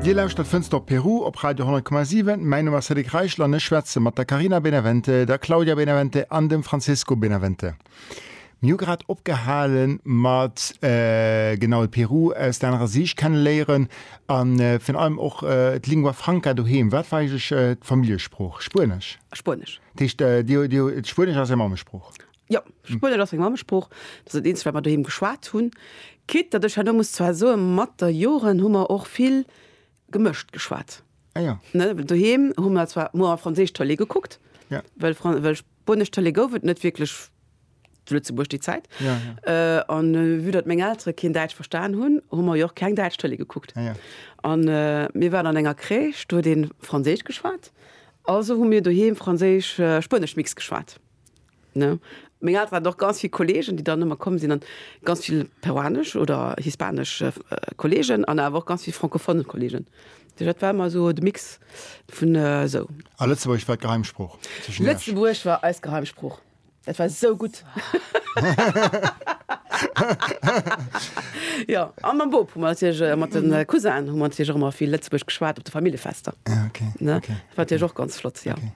Dir lauschtert Fënster op Peru op Radio 10,7. Mäin Numm ass Cédric Reichel an ech schwätze mat der Carina Benavente, der Claudia Benavente an dem Francesco Benavente. Mir hu grad opgehale mat genau de Peru aus der anerer Siicht kenneléieren a virun allem och d'Lingua Franca doheem. Wat war eigentlech d'Familljesprooch? Spuenesch? Spuenesch. Dat heescht, Dir hutt, Spuenesch ass Är Mammesprooch? Jo, Spuenesch ass meng Mammesprooch. Dat ass dat eenzegt, wat mer doheem geschwat hunn. Quitte datt ech herno muss zwar soen, mat der Joren hu mer och vill gemëscht geschwat. Ah ja. Ne, well doheem hu mer zwar muer a franséisch Tëlee gekuckt, Ja. well Fran-, well spuenesch Tëlee gouf et net wierklech zu Lëtzebuerg déi Zäit. Ja, Äh, an vue datt meng Eltere keen Däitsch verstan hunn, hu mer jo och keng däitsch Tëlee gekuckt. Ah ja. An äh, mir waren an enger Crèche, do huet ee franséisch geschwat, also hu mir doheem franséisch-spuenesch-Mix geschwat. Ne? Meng Elteren haten och ganz vill Kollegen, déi dann ëmmer komm sinn, an ganz vill peruanesch oder hispanesch Kollegen an awer och ganz vill francophone Kollegen. Duerch dat war ëmmer esou de Mix vun esou. A Lëtzebuergesch war d'Geheimsprooch tëschent iech? Lëtzebuergesch war eis Geheimsprooch. Dat war esou gutt. Jo, a mam Bop hu mer natierlech, a mat de Cousinnen hu mer natierlech och ëmmer vill Lëtzebuergesch geschwat op de Familljefester. Ah, okay. Ne? Dat war natierlech och ganz flott, jo. Okay.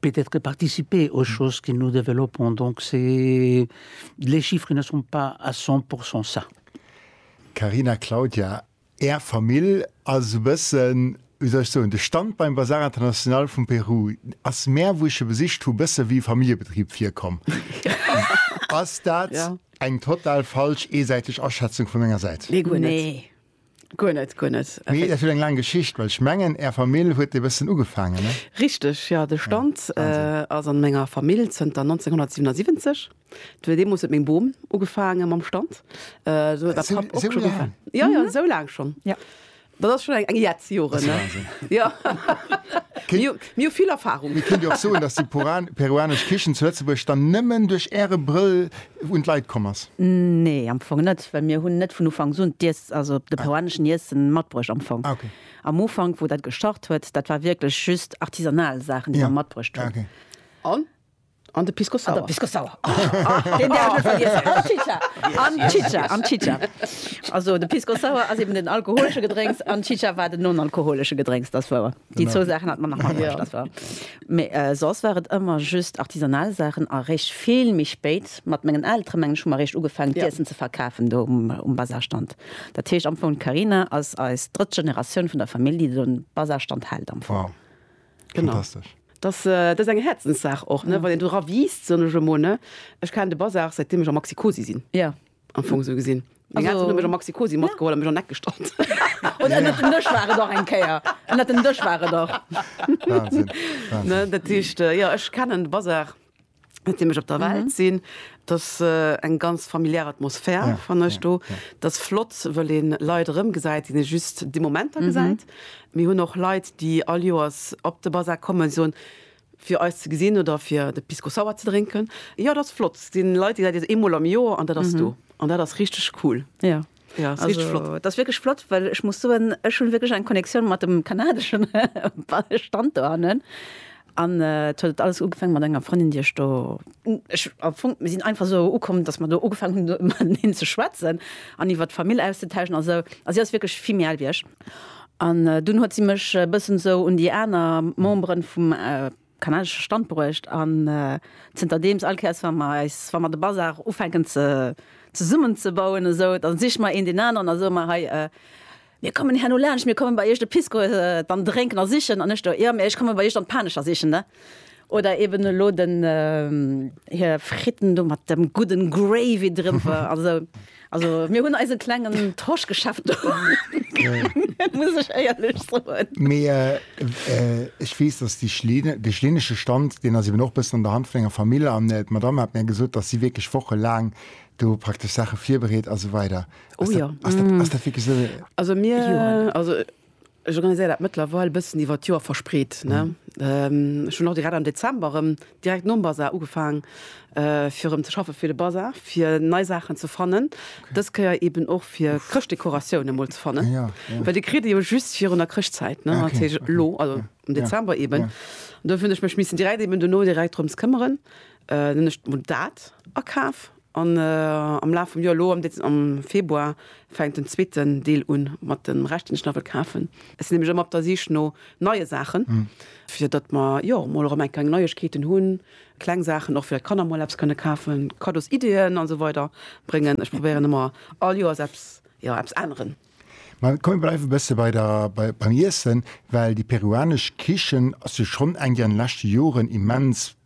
peut-être participer aux choses que nous développons, donc c'est, les chiffres ne sont pas à 100 pour 100 ça. Carina, Claudia, Är Famill ass esou e bëssen, wéi soll ech soen, de Stand beim Bazar International vum Peru ass mär, wou ech e besicht hu, bësse wéi e Familljebetrib virkomm. Ass dat eng total falsch, eesäiteg Aschätzung vu menger Säit? Nee, guer net. Guer net, guer net. Mee dat huet eng laang Geschicht, well ech mengen, Är Famill huet e bëssen ugefaangen, ne? Richteg, jo. De Stand ass a menger Famill zënter 1977. Et huet deemools huet meng Bom ugefaange mam Stand. Do huet mäi Papp och scho gefaangen. Esou laang? Jo, jo, esou laang schonn. Jo. Dat ass schonn eng Jetz Joren, ne? Dat ass e Wahnsinn. Jo. Mir hu vill Erfarung. Mir kënnt jo och soen, dass déi peruanesch Kichen zu Lëtzebuerg dann nëmmen duerch Äre Brëll un d'Leit komm ass? Nee, am Fong net, well mir hunn net vun Ufanks un d'Iess, also de peruaneschen Iessen matbruecht am Fong. Ah okay. Am Ufank, wou dat gestart huet, dat war wierklech just artisanal Saachen, déi mer matbruecht hunn. Ja, okay. An? An de Pisco Sour. An de Pisco Sour. Deen däerf ech net vergiessen. An d'Chicha. An d'Chicha, an d'Chicha. Also de Pisco Sour ass eben den alkoholesche Gedrénks an d'Chicha war den non-alkoholesche Gedrénks, dat ass wouer. Déi zwou Saachen hat mer nach matbruecht, dat ass wouer. Mee soss war et ëmmer just artisanal Saachen a réischt vill méi spéit, mat mengen Elteren, mengen ech, hu mer réischt ugefaangen, d'Iessen ze verkafen do um Bazarstand. Dat heescht am Fong, d'Carina ass eis drëtt Generatioun vun der Famill, déi do en Bazarstand hält am Fong. Wow, fantastesch! Dass, dat ass eng Häerzenssaach och, ne, wann een do era wiisst, soen ech emol, ne. Ech kennen de Bazar, säitdeem ech am Maxi-Cosi sinn. Jo, am Fong sou gesin. Meng Elteren hun mech am Maxi-Cosi matgeholl a mech an Eck gestallt. Und ënnert dem Dësch war et och eng Kéier. Ënnert dem Dësch war et och. Wahnsinn, Wahnsinn. Dat heescht, jo, ech kennen de Bazar seetdeem ech op der Welt sin. Et ass eng ganz familiär Atmosphär, fannen ech do. Et ass flott, wëll ee Leit erëmgesäit, déi ee just déi Momenter gesäit. Mir hun och Leit, déi all Joers op de Bazar kommen, soen, Fir eis ze gesinn oder fir de Pisco Sour ze drénken. Jo, dat ass flott. Si Leit, déi se eemol am Joer an dat ass do. An dat ass richteg cool. Jo, dat ass richteg flott. Dat ass wierklech flott, well ech muss soen, ech hu wierklech eng Connectioun mat dem kanadesche Stand do hannen. An et huet alles ugefaange mat enger Frëndin, déi ech do, ech am Fong, mir sinn einfach esou ukomm, datt mer do ugefaangen hunn, mateneen ze schwätzen an iwwert d'Famill auszetauschen a sou. A si ass wierklech vill méi al wéi ech. An dunn huet si mech e bëssen esou un déi aner Memberen vum kanadesche Stand bruecht an zënterdeems all Kéiers wa mer eis, wa mer de Bazar ufänken ze zesummen ze bauen esou, da siche mer een deen aneren a soe mer, hei mir kommen herno laanscht, mir kommen bei iech de Pisco dann drénken a sichen an ech do, jo, mä ech komme bei iech dann d'Panescher sichen ne. Oder eben elo den hir Fritten do mat dem gudden Gravy driwwer an esou. Also mir hunn eise klengen Torschgeschäft do muss ech éierlech soen. Mee ech weess, dass déi Schlin, dee schlinesche Stand, deen ass eben och e bëssen an der Hand vun enger Famill an d'Madame hat mir gesot, dass si wierklech wochelaang do praktesch Saache virbereet a sou weider. Oh jo. Ass dat, ass dat wierklech esou? Also mir, also Ech organiséier dat mëttlerweil e bëssen iwwer d'Joer verspreet. Ech hunn och direkt am Dezember erëm, direkt nom Basar, ugefaang fir erëm ze schaffe fir de Basar, fir nei Saachen ze fannen. Dës Kéier eeben och fir Chrëschtdekoratioune mol ze fannen, well déi kritt ee jo just virun der Chrëschtzäit, dat heescht elo, also am Dezember eeben. Dofir hunn ech mech missen direkt eeben dono direkt drëms këmmeren. Dann hunn ech mol dat akaf. An am Laf vum Joer, elo am Februar, fänkt den zweeten Deel un mat dem Rescht, deen ech nach wëll kafen. Ech sinn nämlech ëmmer op der Sich no neie Saachen, fir datt mer jo mol erëm eng kleng Neiegkeeten hunn, kleng Saachen och fir datt d'Kanner mol eppes kënne kafen, Kaddosiddeeën an esou weider bréngen. Ech probéieren ëmmer all Joers eppes, jo eppes änneren. Mä komm mir bleiwe bësse bei der, beim Iessen, well déi peruanesch Kichen ass jo schonn eng, déi an de leschte Joren immens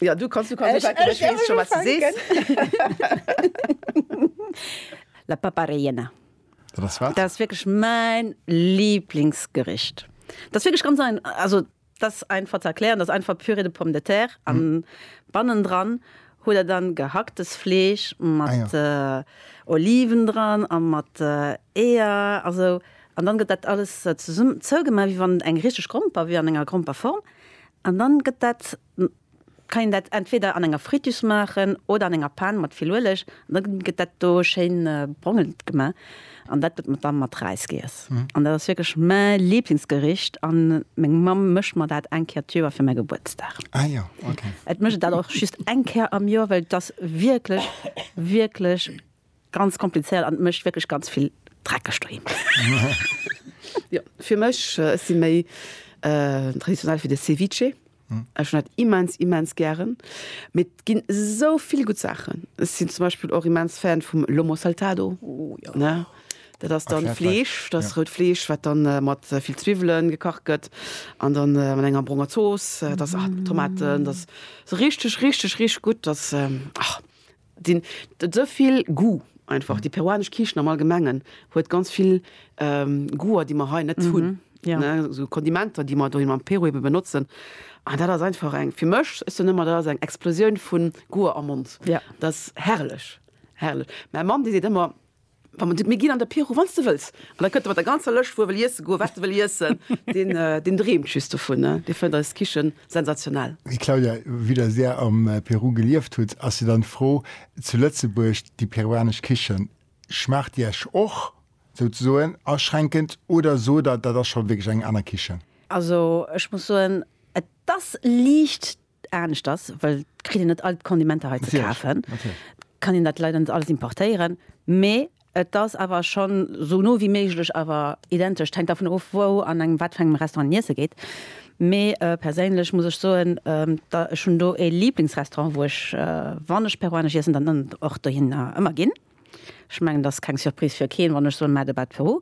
Jo, du kanns, du kanns Ech- ech- ech weess scho wat se sees. La papa rellena. Dat ass wat? Dat ass wierklech mäin Lieblingsgericht. Dat ass wierklech ganz ein, also dat ass einfach ze erklären, dat ass einfach Pürée de pommes de terre an bannendran huet der dann gehacktes Fleesch mat Oliven dran a mat Eeër a sou an dann gëtt dat alles zesummen zougemaach wéi wann et eng richteg Gromper wier an enger Gromperform an dann gëtt dat kann een dat entweder an enger Fritus maachen oder an enger Pan mat vill Ueleg an da gëtt dat do schéin brongelt gemaach an dat gëtt dann mat Räis giess an dat ass wierklech mäi Liblingsgericht an meng Mamm mécht mer dat eng Kéier d'Joer fir mäi Gebuertsdag. Ah jo, ok. Et mécht et dat och just eng Kéier am Joer, well et ass wierklech, wierklech. Ganz komplizéiert an mécht wierklech ganz vill dreckeg doheem. Jo, fir mech, ech si méi traditionell fir de Ceviche. Ech hunn dat immens, immens gären. Mee et ginn esou vill gutt Saachen. Ech sinn zum Beispill och immens Fan vum Lomo Saltado. Oh jo, ne? Dat ass dann Fleesch, dat ass rout Fleesch, wat dann mat vill Zwiwwele gekacht gëtt an dann mat enger bronger Zooss. Dat ass, ah, Tomaten, dat ass esou richteg, richteg, richteg gutt. Dat ass, ah. Sinn et sou vill Goût einfach. Déi peruanesch Kichen am Allgemengen huet ganz vill Goûter, déi mer hei net hunn, ne, sou Kondimenter, déi mer doheem am Peru ebe benotzen. An dat ass einfach eng, fir mech, ech soen ëmmer, dat ass eng Explosioun vu Goûter am Mond. Dat ass herrlech, herrlech. Mäi Mann, dee seet ëmmer. Mir ginn an de Piro, wann s de wëlls. An da kënnt e mat der ganzer Lëscht, wou e wëll iesse goen, wat e wëll iessen. Deen dreemt just dovun. Dee fënnt eis Kichen sensationell. Claudia, vue dass Där am Peru gelieft hutt, ass jo dann d'Fro, zu Lëtzebuerg, déi peruanesch Kichen, schmaacht déi Iech och souzesoen aschränkend oder sot Der, dat ass scho wierklech eng aner Kichen? Also ech muss soen, et ass liicht. Anescht ass, well et kritt een net all d'Kondimenter hei ze kafen, kann een dat leider net alles importéieren, mee et ass awer schonn esou no wéi méiglech awer identesch. Et hänkt dervun of, wou an engem wat fir engem Restaurant een iesse geet, mee perséinlech muss ech soen, ech hunn do e Liblingsrestaurant, wou ech, wann ech peruanesch iessen, dann och dohinner ëmmer ginn. Ech mengen, et ass keng Surprise fir keen, wann ech soen Merde bad Peru.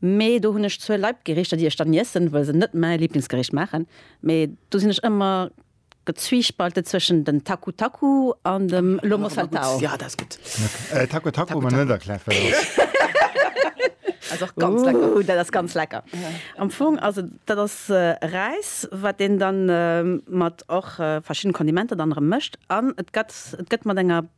Mee do hunn ech zwou Leibgerichter, déi ech dann iessen, wëll se net mäi Lieblingsgericht maachen. Mee do sinn ech ëmmer gezwiespaltet zwëschen den Taku Taku an dem Lomo Saltao. Jo, dat ass gutt. Okay, Taku Taku, ma net erkläert, wat dat ass. Ass och ganz lecker. Ooh, dat ass ganz lecker. Am Fong ass et, dat ass Räis, wat een dann mat och verschiddenen Kondimenter dann erëm mëscht an et gëtt, et gëtt mat enger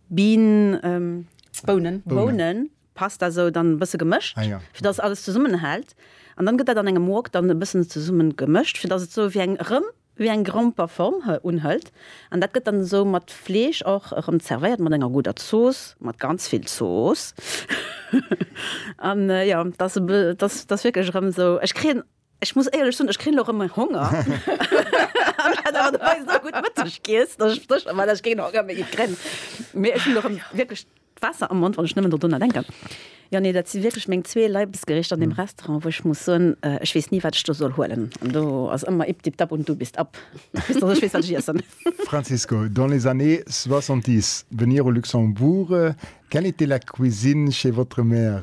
Bean, Bounen. Bounen, passt da sou dann e bësse gemëscht, fir dass alles zesummenhält. An dann gëtt dat an engem Wok dann e bëssen zesummen gemëscht, fir dass et sou wéi eng, rëm wéi eng Gromper Form unhëlt. An dat gëtt dann sou mat Fleesch och erëm zervéiert, mat enger gudder Zooss, mat ganz vill Zooss. An jo, dat ass, dat ass wierklech erëm sou, ech kréien Ech muss éierlech soen, ech kréien elo erëm méi Honger. An dat awer dobäi esou gutt Mëtteg giess, dass ech sécher war, dass ech keen Honger méi kréien. Mee ech hunn elo erëm wierklech d'Waasser am Mond, wann ech nëmmen do drunner denken. Jo, nee, dat si wierklech meng zwee Leibesgericht an deem Restaurant, wou ech muss soen, ech weess ni, wat ech do soll huelen. An do ass ëmmer ip dip dap und du bist ab, bis dass ech weess, wat ech iessen. Francisco, dans les années soixante-dix, venir au Luxembourg, quelle était la cuisine chez votre mère?